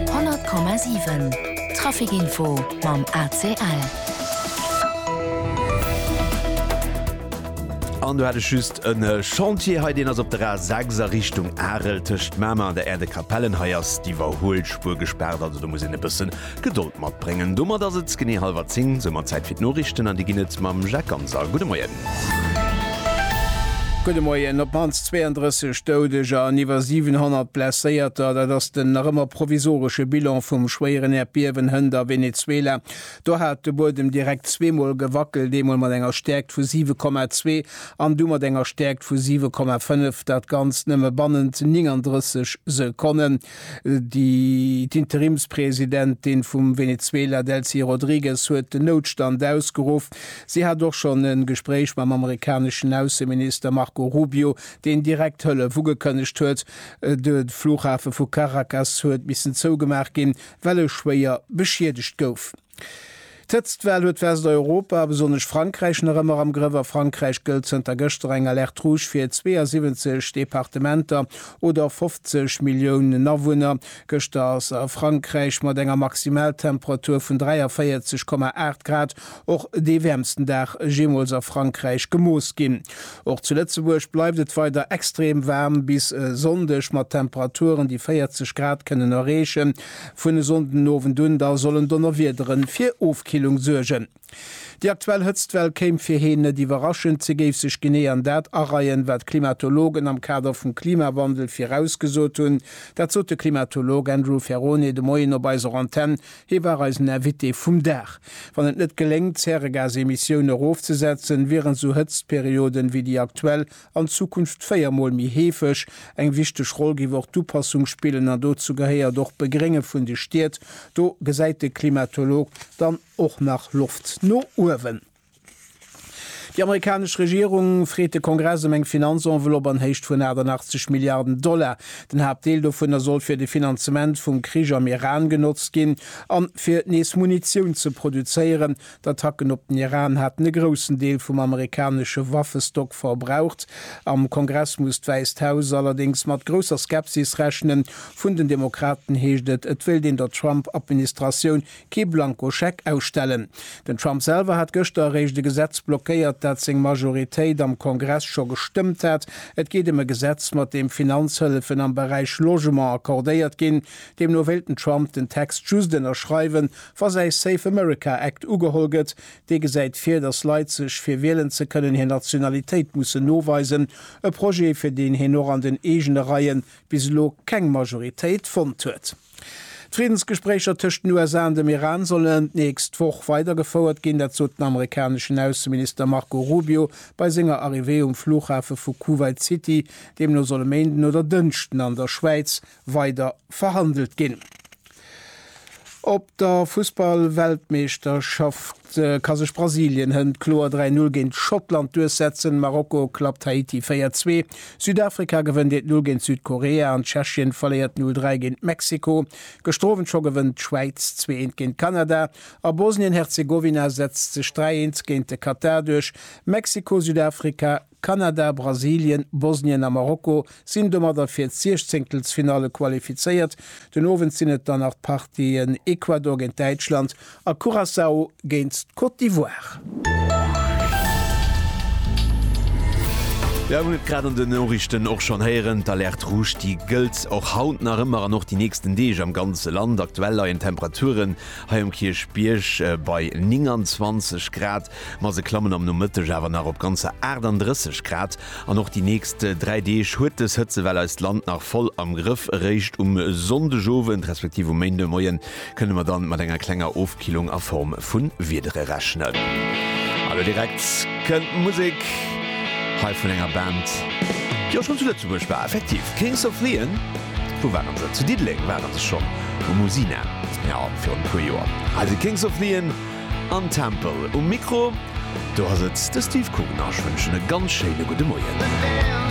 100,7 Traficinfo mam ACL. An do hat ech just en Chantier hei, deen ass op der A 6 a Richtung Arel tëscht Mamer an der Aire de Capellen. Hei ass d'Iwwerhuelspuer gespaart, also do muss een e bëssen Gedold matbréngen. Domat ass et genee hallwer 10, soumat Zäit fir d'Noriichten an déi ginn et mam Jacques Ganser. Gudde Moien. Gudde Moien. Op d'mannst 32 Doudeger an iwwer 700 Blesséierter, dat ass den nach ëmmer provisoresche Bilan vum schwéieren Äerdbiewen hënt a Venezuela. Do hat de Buedem direkt zweemol gewackelt, eemol mat enger Stäerkt vu 7,2 an du mat enger Stäerkt vu 7,5, dat Ganzt nëmme bannent 39 Sekonnen. D'Interimspresidentin vum Venezuela, Delcy Rodriguez, huet den Noutstand ausgeruff. Si hat och schonn e Gespréich mam amerikaneschen Ausseminister Marco Rubio, deen direkt Hëllef ugekënnegt huet. De Flughafe vu Caracas huet missen zougemaach ginn, well e schwéier beschiedegt gouf. D'Hëtztwell huet Westeuropa, a besonnesch Frankräich, nach ëmmer am Grëff. A Frankräich gëllt zënter gëschter eng Alerte rouge fir 72 Departementer oder 50 Milliounen Awunner. Gëschter ass a Frankräich mat enger Maximaltemperatur vun 43,8 Grad och dee wäermsten Dag jeemools a Frankräich gemooss ginn. Och zu Lëtzebuerg bleift et weider extrem waarm bis e Sonndeg mat Temperaturen, déi 40 Grad kënnen erreechen. Vun e Sonndenowend un da sollen Donnerwiedere fir Ofkillung suergen. Déi aktuell Hëtztwell kéim fir Heen net iwwerraschend. Se géif sech genee an dat areien, wat d'Klimatologen am Kader vum Klimawandel virausgesot hunn. Dat sot de Klimatolog Andrew Ferrone de Moien op eiser Antenn. Hie war eisen Invité vum Dag. Wann et net geléngt, d'Zäregasemissioune erofzesetzen, wieren esou Hëtztperioden, wéi déi aktuell, an Zukunft véier Mol méi heefeg. Eng wichteg Roll géif och d'Upassung spillen an dozou gehéiert och d'Begrénge vun de Stied. Do gesäit de Klimatolog dann och nach Loft no uewen. Déi amerikanesch Regierung freet de Kongress ëm eng Finanzenveloppe an Héicht vun 88 Milliarden Dollar. Den Haaptdeel dovunner soll fir de Finanzement vum Krich am Iran genotzt ginn an fir nees Munitioun ze produzéieren, D'Attacken op den Iran haten e groussen Deel vum amerikanesche Waffestock verbraucht. Am Kongress muss d'Wäisst Haus allerdéngs mat grousser Skepsis rechnen. Vun den Demokraten heescht et, et wéilt een der Trump-Administratioun kee Blankoscheck ausstellen. Den Trump selwer hat gëschter eréischt e Gesetz blockéiert, dat seng Majoritéit am Kongress scho gestëmmt hat. Et geet ëm e Gesetz, mat deem Finanzhëllefen am Beräich Logement accordéiert ginn. Deemno wéilt den Trump den Text just ënnerschreiwen, Wa säi Save America Act ugeholl gëtt, dee gesäit vir, datt Leit sech fir wielen ze kënnen hir Nationalitéit mussen noweisen, e Projet fir deen hien och an den eegene Reie bis elo keng Majoritéit fonnt huet. D'Friddensgespréicher tëscht den USA an dem Iran sollen d'nächst Woch weider gefouert ginn, dat sot den amerikaneschen Ausseminister Marco Rubio bei senger Arrivée um Flughafe vu Kuwait City. Deemno soll e Méinden oder Dënschden an der Schwäiz weider verhandelt ginn. Op der Fussballweltmeeschterschaft ka sech Brasilien hënt kloer 3 Null géint Schottland duerchsetzen, Marokko klappt Haiti 4 Zwee, Südafrika gewënnt 1 Null géint Südkorea an Tschechien verléiert 0 Dräi géint Mexiko. Gëschter Owend scho gewënnt d'Schwäiz 2 Eent géint Kanada a Bosnien-Herzegowina setzt sech 3 Eent géint de Katar duerch, Mexiko-Südafrika Kanada, Brasilien, Bosnien a Marokko sinn domadder fir d'Siechzéngtelsfinalle qualifizéiert. Den Owend sinn et dann nach d'Partien Ecuador géint Däitschland a Curaçao géint d'Côte d'Ivoire. Jo, mir hunn et grad an den Noriichten och schonn héieren, d'Alerte rouge, déi gëllt och haut nach ëmmer an och déi nächsten Deeg am ganze Land. Aktuell leien d'Temperaturen hei um Kierchbierg bei 29 Grad. Ma se klammen am Nomëtteg awer nach op ganzer 38 Grad an och déi nächst dräi Deeg huet dës Hëtzewell eist Land nach voll am Grëff. Eréischt um Sonndegowend respektiv um Méindemoie kënne mer dann mat enger klenger Ofkillung a Form vu Wiedere rechnen. A lo direkt kënnt Musek hei vun enger Band, déi och schonn zu Lëtzebuerg war, effektiv Kings of Leon. Wou waren se? Zu Diddeleng ware se schonn, um Usina, jo, virun e puer Joer. Hei si Kings of Leon An Tempel um Mikro, do ass et de Steve Kugner. Ech wënschen e ganz schéine gudde Moien.